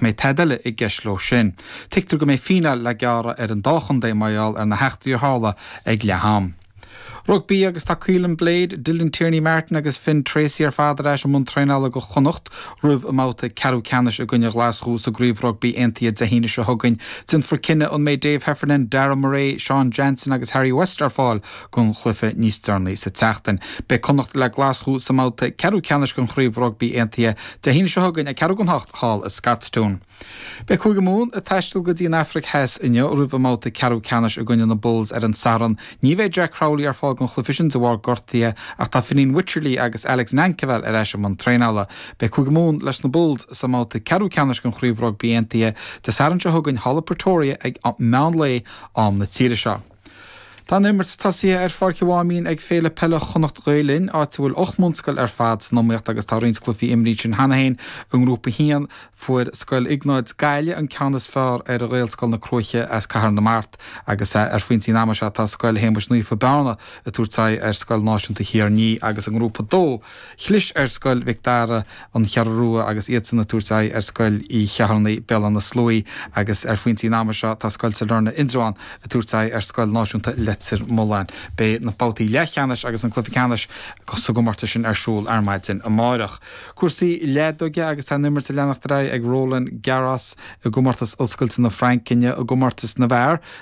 mbeidh tada eile i gceist leo sin. Tuigtear go mbeidh fíneáil le gearradh ar an dá chontae mar gheall ar na heachtraí a tharla ag leath-am. Rugbaí agus tá Caolan Blade, Dylan Tierney Martin agus Finn Treacy ar fad ar ais i mbun traenála do Chonnacht roimh a mbabhta ceathrú ceannais i gcoinne Ghlaschú sa gCraobh Rugbaí Aontaithe Dé hAoine seo chugainn. Déanfar cinneadh an mbeidh Dave Heffernan, Darragh Murray, Seán Jansen agus Harry West ar fáil don chluiche níos deireanaí sa tseachtain. Beidh Connacht le Glaschú sa mbabhta ceathrú ceannais den Chraobh Rugbaí Aontaithe Dé hAoine seo chugainn ag ceathrú don ocht thall i Scotstoun. Beidh Cúige Mumhan ag taisteal go dtí an Afraic Theas inniu roimh a mbabhta ceathrú ceannais i gcoinne na Bulls ar an Satharn. Ní bheidh Jack Crowley ar fáil don chluiche sin de bharr gortaithe ach tá Fineen Wycherley agus Alex Nankivell ar ais i mbun traenála. Beidh Cúige Mumhan leis na Bulls sa mbabhta ceathrú ceannais den Chraobh Rugbaí Aontaithe Dé Sathairn seo chugainn thall i Pretoria ag meán lae, am na tíre seo. Tá an imirt tosaithe ar Pháirc an Mháimín ag Féile Peile Chonnacht Ghael Linn, áit a bhfuil ocht mbunscoil ar fad san iomaíocht agus tá roinnt cluichí imrithe ansin cheana féin. I nGrúpa a haon, fuair Scoil Iognáid Gaillimh an ceann is fearr ar Ghaelscoil na Cruaiche as Cathair na Mart agus ar phointí an ama seo tá Scoil Shéamais Naofa Bearna ag tabhairt aghaidh ar Scoil Náisiúnta Thír an Fhia agus i nGrúpa a dó Chlis ar Scoil Mhic Dara, An Cheathrú Rua agus iadsan ag tabhairt aghaidh ar Scoil Uí Cheithearnaigh, Béal Átha na Sluaighe, agus ar phointí an ama seo tá Scoil Sailearna, Indreabhán, ag tabhairt aghaidh ar Scoil Náisiúnta Leitir Mealláin. Beidh na babhtaí leathcheannais agus na cluichí ceannais sa gcomórtas sin ar siúl ar maidin amárach. Cúrsaí leadóige agus tá an imirt ag leanacht ar aghaidh ag Roland Garros i gcomórtas Oscailte na Fraince inniu i gcomórtas na bhfear.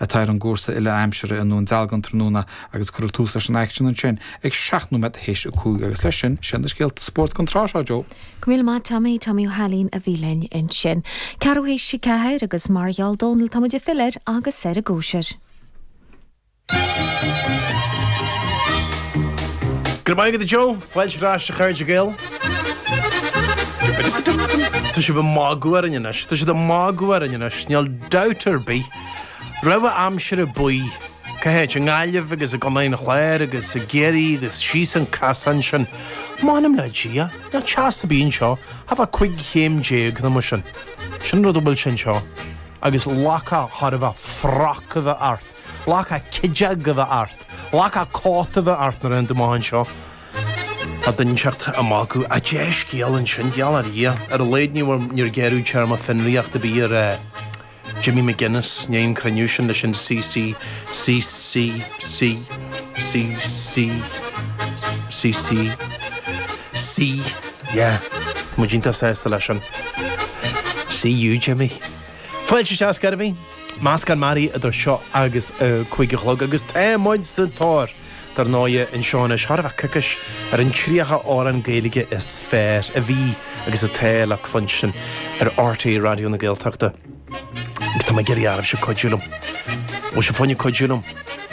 atá ar an gcúrsa uile-aimsire i nDún Dealgan tráthnóna agus cuireadh tús leis an aicsean ansin ag seacht nóiméad théis a cúig agus leis sin, sin na scéalta spóirt don tráth seo, Joe. Go míle maith Tommy, Tommy Ó hAilín a bhí linn ansin. Ceathrú théis a ceathair agus mar a gheall Dónall tá muid ag filleadh air agus ar an gcóisir. Go raibh maith agat a Joe, fáilte ar ais a chairde Gael. Tá sibh ag magadh orainn anois. Tá sibh ag magadh orainn anois. Níl dabht ar bith. Rabhadh aimsire buí, cá háit, i nGaillimh agus i gContae an Chláir agus i gCiarraí agus síos an casán sin. M'anam le Dia, níl teas ar bith anseo, thart fá cúig chéim déag nó mar sin. Sin an rud a bhfuil sé anseo. Agus lacha thar a bheith froc a bheith ort, lacha cídeog a bheith ort, lacha cóta a bheith ort nuair a théann tú amach anseo. Tá d'innseacht a mbácadh a' dea-scéal ansin, gheall ar Dhia. Ar a laghad níor gearradh téarma fionraíocht ar bith ar Jimmy McGuinness, i ndiaidh an cruinniú sin leis an CC, CC, C, CC, CC, C, yeah, tá muid iontach sásta leis sin. See you, Jimmy. Fáilte ar ais ar scor ar bith. Meascán mearaí idir seo agus a cúig a chlog agus tá muid sa tóir. Dar ndóighe, anseo anois go raibh ag cur ceist, ar an tríocha amhrán Gaeilge is fearr a bhí agus atá le cluinstin ar rte Raidió na Gaeltachta, agus tá mé ag iarraidh oraibhse cuidiú liom. Bhuel, seo, fáinne cuidiú liom.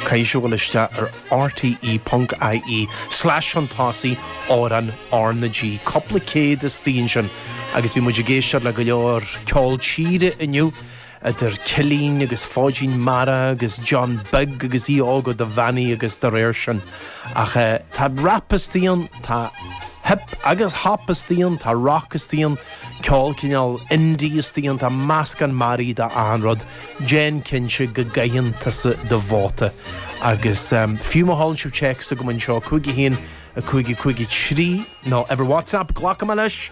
Caithfidh sibh a ghabháil isteach ar rte ponc ie slash an tosaigh amhrán R na G. Cupla céad istigh ansin, agus bhí muid ag éisteacht le go leor ceol tíre inniu, idir Cillín agus Fóidín Meara agus John Beag agus Aodh Óg Ó Dubheannaigh agus dá réir sin. Ach. Tá rap istigh ann, tá hip agus hop istigh ann, tá rock istigh ann, ceol cineál indie istigh ann, tá meascán mearaí d'achan rud, déan cinnte go gcaitheann tusa do vóta. Agus um, fiú má sheolann sibh téacs chugam anseo cúig a haon a cúig a cúig a trí nó ar WhatsApp glacfaidh mé leis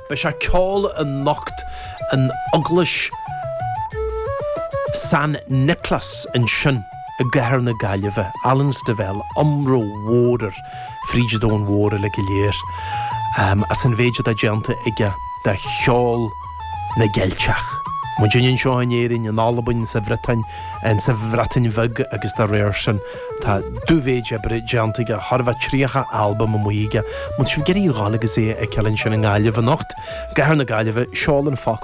Beidh sé ag ceol anocht in Eaglais San Nioclás ansin i gcathair na Gaillimhe, Alan Stivell, iomrá mór air fríd an domhan mhór uilig go léir as an mhéid atá déanta aige do cheol na gCeilteach, muidinne anseo in Éirinn, in Albain, sa Bhriotáin, sa Bhreatain Bheag agus dá réir sin. Tá dú-mhéid oibre déanta aige, thar a bheith, 30 albam amuigh aige. Má tá sibh ag iarraidh a ghabháil agus é a fheiceáil ansin i nGaillimh anocht, i gcathair na Gaillimhe, seol an focal